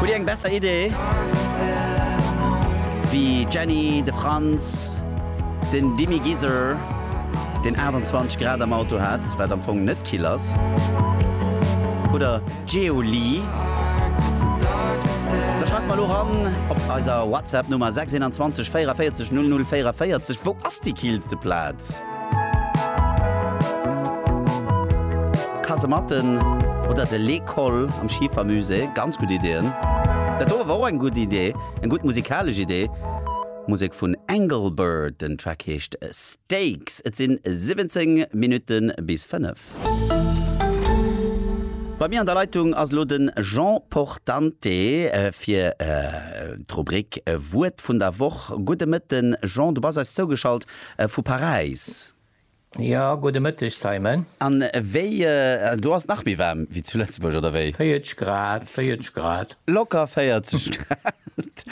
Hutt Dir eng besser Idee wéi d'Jenny, de Franz, den Dimmy Giser, deen 28 Grad am Auto hat, wat am Fong net kill ass, oder d'Geolie? Da schreift mer elo eran op eiser WhatsApp Nummer 621 44 00 44. Wou ass déi killste Plaz? Kasematten oder de Les Cols am Schifermusée, ganz gutt Ideeën. Dat do awer och eng gutt Idee, eng gutt musikalesch Idee. Musek vun Engelbert, den Track heescht Stakes. Et sinn 17 Minutten bis 5. Bei mir an der Leitung ass elo den Jean Portante fir d'Rubrik Wuert vun der Woch. Gudde Mëtten Jean, du bass eis zougeschalt Vu Paräis. Jo, gudde Mëtteg, Simon. An wéi, do ass et nach méi waarm wéi zu Lëtzebuerg, oder wéi? 40 Grad, 40 Grad. Locker 40 Grad,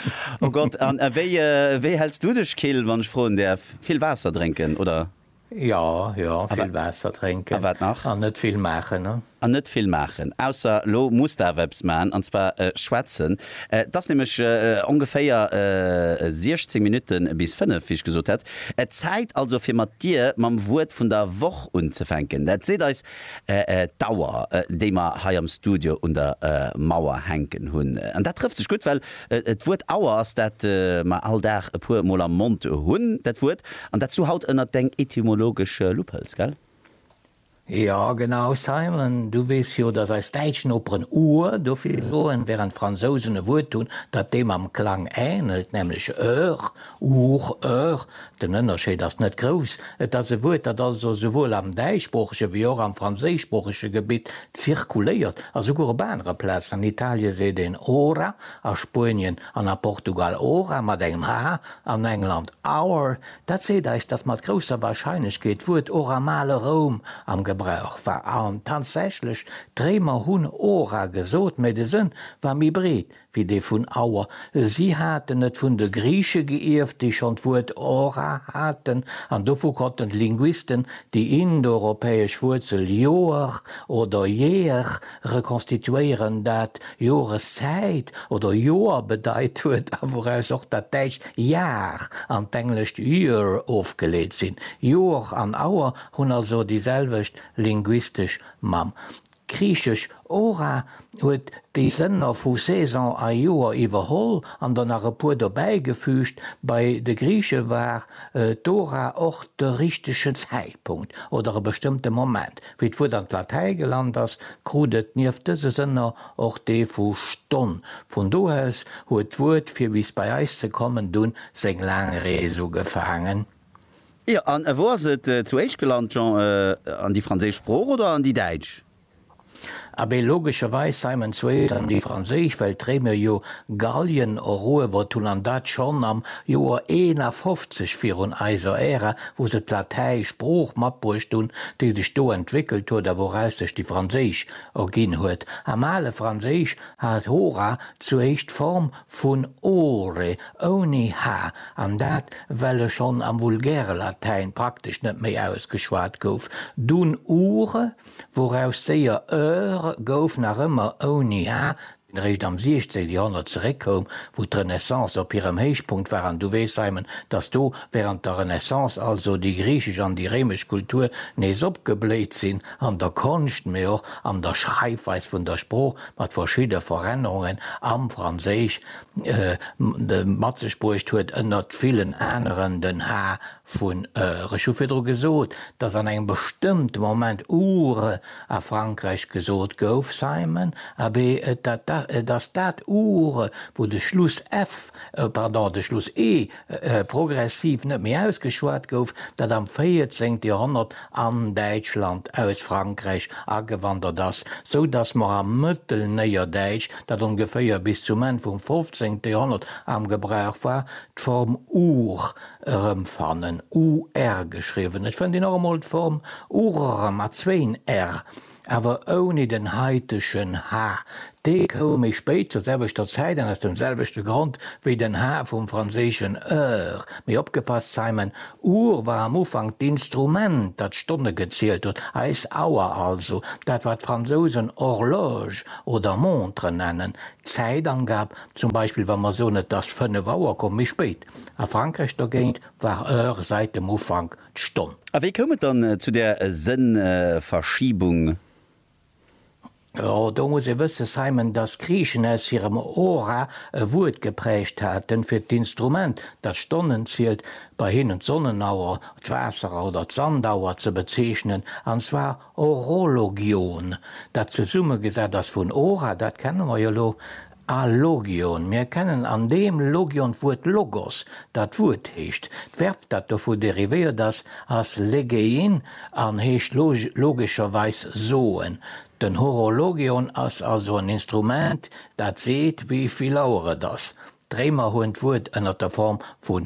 o Gott. An wéi, wéi häls du dech kill, wann ech froen däerf? Vill Waasser drénken, oder? Jo, jo, vill Waasser drénken. A wat nach? An net vill maachen, ne? An net vill maachen. Ausser lo muss de awer eppes maachen, an zwar schwätzen. Et ass nämlech ongeféier 16 Minutte bis fënnef, wéi ech gesot hat. Et Zäit also fir mat dir mam Wuert vun der Woch unzefänken. Dat seet eis d'Auer, déi mer hei am Studio un der Mauer hänken hunn. An dat trëfft sech gutt, well d'Wuert Auer ass, dat mer all Dag e puer mol am Mond hunn. Dat Wuert, an dat s du haut ënnert deng etymologesch Lupp hëls, gell? Jo, genau, Simon, du weess jo, datt eis däitsch Noperen Ohr dofir soen, während d'Fransousen e Wuert hunn, dat deem am Klang änelt, nämlech eur, our, eur. Den Ënnerscheed ass net grouss. Et ass e Wuert, dat also souwuel am däischsproochege wéi och am franséischsproochege Gebitt zirkuléiert. A souguer op anere Plazen, an Italie seet een ora, a Spuenien an a Portugal ora mat engem h, an England our, Dat seet eis, datt mat grousser Warscheinlechkeet d'Wuert Ora am ale Roum am Gebrauch war. An tatsächlech, d'Réimer hunn Ora gesot, mä de Sënn war méi breet wéi dee vun Auer. Si haten et vun de Griiche geierft, déi schonn d'Wuert Ora haten, an dovu konnten d'Linguisten déi indoeuropäesch Wuerzel Ioer oder Ieer rekonstituéieren, dat Joreszäit oder Joer bedeit huet a wouraus och dat däitscht Jahr an d'englescht year ofgeleet sinn. Joer an Auer hunn also déi selwecht linguistesch Mamm. D'griichesch hora huet déi Sënner vu Saison a Joer iwwerholl an der nach e puer dobäigefüügt. Bei de Griiche war d'hora och de richtege Zäitpunkt oder e bestëmmte Moment. Wéi d'Wuert an d'Latäi gelant ass, krut et nieft dëse Sënner och dee vu Stonn. Vun do aus huet d'Wuert, fir bis bei eis ze kommen, dunn seng laang Rees ugefaangen. Jo, an wou ass et zu éischt gelant, Jean? An déi franséisch Sprooch oder an déi däitsch? Abee logescherweis Simon Zweet an déi Franséisch, well d'Réimer jo Gallien eruewert hunn an dat schonn am Joer 51 virun eiser Ära, wou se d'Latäi Sprooch matbruecht hunn, déi sech do entwéckelt huet a wouraus sech déi Franséisch erginn huet. Am ale Franséisch hat hora z'éischt d'Form vun ore, ouni h, an dat well e schonn am vulgäre Latäin praktesch net méi ausgeschwat gouf. Dunn ure wouraus séier Eure gouf, nach ëmmer ouni ha, deen eréischt am 16 Joerhonnert zeréckkoum, wou d'Renaissance op hirem Héichpunkt war. An Du weess, Simon, datt do während der Renaissance also déi griichesch an déi réimesch Kultur nees opgebléit sinn, an der Konscht, mee och an der Schreifweis vun der Sprooch, mat verschidde Verännerungen am Franséisch, de mat sech bruecht huet, ënnert villen aneren den ha, Vun ër, ech hu virdru gesot, dass an engem bestëmmte Moment ure a Frankräich gesot gouf, Simon, abee, et dat da, et ass dat ure, wou de Schluss f, pardon, de Schluss e progressiv net méi ausgeschwat gouf, dat am véierzéngte Joerhonnert an Däitschland aus Frankräich agewandert ass, sou dass mer am Mëttelnéierdäitsch, dat ongeféier bis zum Enn vum fofzéngte Joerhonnert am Gebrauch war, d'Form ur Erëmfannen, UR geschriwwen. Ech fënnt een och emol d'Form urr mat zwéin r, awer ouni den heitegen h. Dee koum méi spéit zur selwechter Zäit an aus dem selwechte Grond wéi den h vum franséischen heure. Mee opgepasst, Simon, Uhr war am Ufank d'Instrument, dat d'Stonne gezielt huet, eis Auer also, dat wat d'Fransousen horloge oder montre nennen, d'Zäitangab. Zum Beispill wa mer soen, et ass fënnef Auer, komm méi spéit. A Frankräich dogéint war Heure säit dem Ufank d'Stonn. A wéi koum et dann zu där Sënnverschiebung? Jo, do muss ee wësse, Simon, datt Griichen aus hirem Hora e Wuert geprägt haten, fir d'Instrument, dat d'Stonnen zielt, bei hinnen d'Sonnenauer, d'Waasserer oder d'Sandauer ze bezeechnen, an zwar horologion, dat zesummegesat ass vun hora, dat kenne mer jo elo, A Logion, mir kennen an deem Logion d'Wuert Logos, dat Wuert heescht. D'Verb, dat dovu derivéiert ass, ass legein an heescht logescherweis soen. Den Horologion ass also en Instrument, dat seet, wéi vill Auer et ass. D'Réimer hunn d'Wuert ënner der Form vun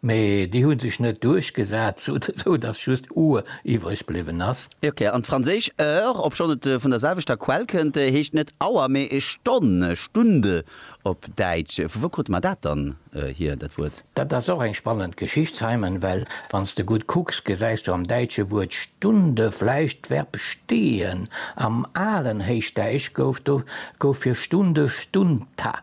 Mee déi hu sech net duerchgesat, sou dass just Uhr iwwreg bliwwen ass. Ok, an d'franséisch heure, obschonn et vun der selwechter Quell kënnt, heescht net Auer, mee Stonn, Stunde op Däitsch. Vu wou krute mer dat dann hier, dat Wuert? Dat ass och eng spannend Geschicht, Simon, well wann s de gutt kucks, gesäis du am däitsche Wuert Stunde vläicht d'Verb stehen. Am alen Héichdäitsch gouf do gouf fir Stunde Stunta.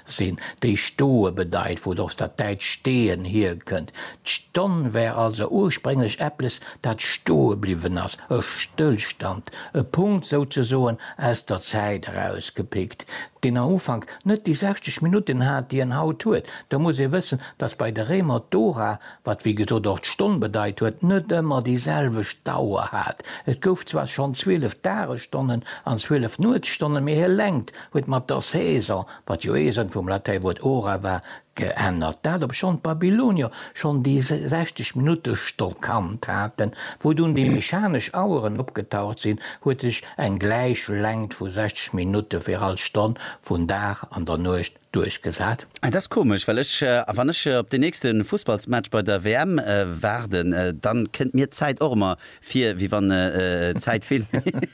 Sinn, déi stoe bedeit, wou et och dat däitscht stehen hierkënnt. D'Stonn war also ursprénglech eppes, dat stoe bliwwen ass, e Stëllstand, e Punkt souzesoen aus der Zäit erausgepickt, deen am Ufank net déi 60 Minutten hat, déi en haut huet. Da muss ee wëssen, dass bei de Réimer d'Hora, wat wéi gesot och d'Stonn bedeit huet, net ëmmer déi selwecht Dauer hat. Et gouf zwar schonn zwielef Dagesstonnen an zwielef Nuetsstonne, mee hir Längt huet mat der Saison, wat jo ee Sënn vum Latäiwuert ora war, geännert, dat obschonn d'Babylonier schonn déi 60 Minutte Stoll kannt haten. Wou dunn déi mechanesch Aueren opgetaucht sinn, huet sech eng gläich Längt vu 60 Minutte fir all Stonn vun Dag an der Nuecht duerchgesat. Et ass komesch, well ech, wann ech op deen nächste Fussballsmatch bei der WM waarden, da kënnt mir d'Zäit och ëmmer Vir wéi wann d'Zäit vill méi schnell.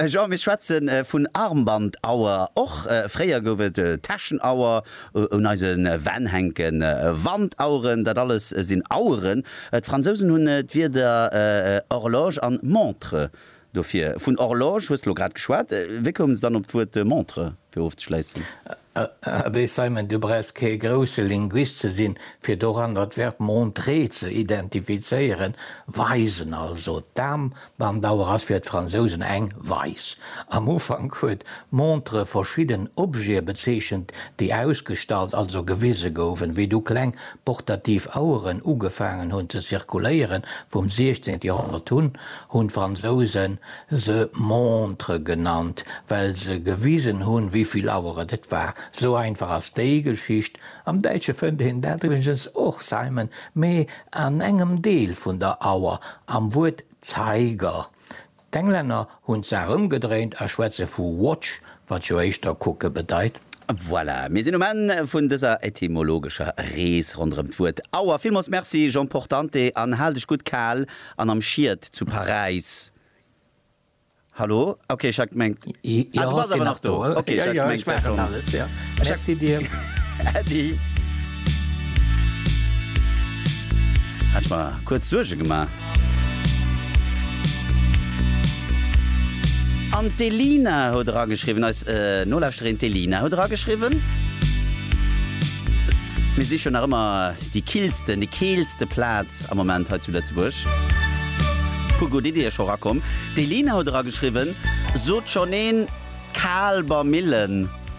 Jean, mir schwätze vun Armbandauer. Och fréier gouf et Täschenauer, un eise Wänn hänke Wandaueren. Dat alles sinn Aueren. D'Fransousen hunn d'Wierder horloge an montre dofir. Vun horloge hues de elo grad geschwat. Wéi koum se dann op d'Wuert montre, fir ofzeschléissen? Abee Simon, du brauchs kee grousse Linguist ze sinn, fir doran dat Verb montrer ze identifizéieren. Weisen also. D'Dam mam Dauer ass fir d'Fransousen eng Weis. Am Ufank huet montre verschidden Objete bezeechent, déi ausgestallt, also gewise goufen. Wéi du kleng portativ Aueren ugefaangen hunn ze zirkuléieren, vum 16. Joerhonnert un, hunn d'Fransousen, se Montre genannt, well se gewisen hunn, wéi vill Auer et et war. Sou einfach ass déi Geschicht. Am Däitsche fënnt een dat iwwregens och, Simon, mee an engem Deel vun der Auer, am Wuert Zeiger. D'Englänner hunn d'Saach ëmgedréint a schwätze vu Watch, Wat jo éischter kucke bedeit. Voilà, mir sinn um Enn vun dëser etymologescher Rees ronderëm d'Wuert Auer. Villmools Merci Jean Portante an hal dech gutt kal an am Schied zu Paräis. Hallo? Ok, ech hat gemengt, ah, du bass awer nach do. Ok, ech hat gemengt, wär schonn. Merci dir. Äddi. Hat ech mer kuerz Suerge gemaach. An d'Elina huet erageschriwwen, eis Nolauschterin d'Elina huet erageschriwwen, Mir sich jo nach ëmmer déi killsten, déi keelste Plaz am Moment hei zu Lëtzebuerg. Puer gutt Iddie scho rakomm. D'Elina huet erageschriwwen, Sot schonn een Kaalbermillen?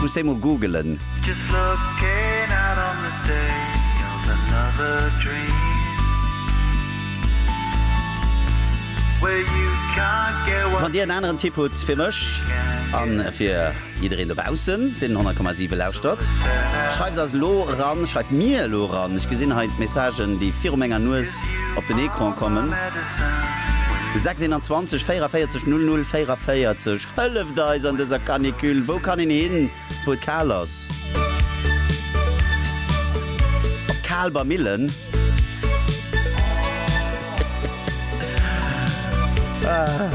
Muss déi mol googelen. Just looking out on the day of another dream where you can't get what you want. Wann dir en aneren Tipp hutt fir mech an fir jiddereen dobaussen deen den 100,7 lauschtert, schreift eis elo eran, schreift mir elo eran. Ech gesinn hei d'Messagen déi viru menger Nues op den Ecran kommen. 621 44 00 44. Hëlleft eis an dëser Canicule! Wou kann een hin, wou et kal ass? Op Kaalber Millen? Ah!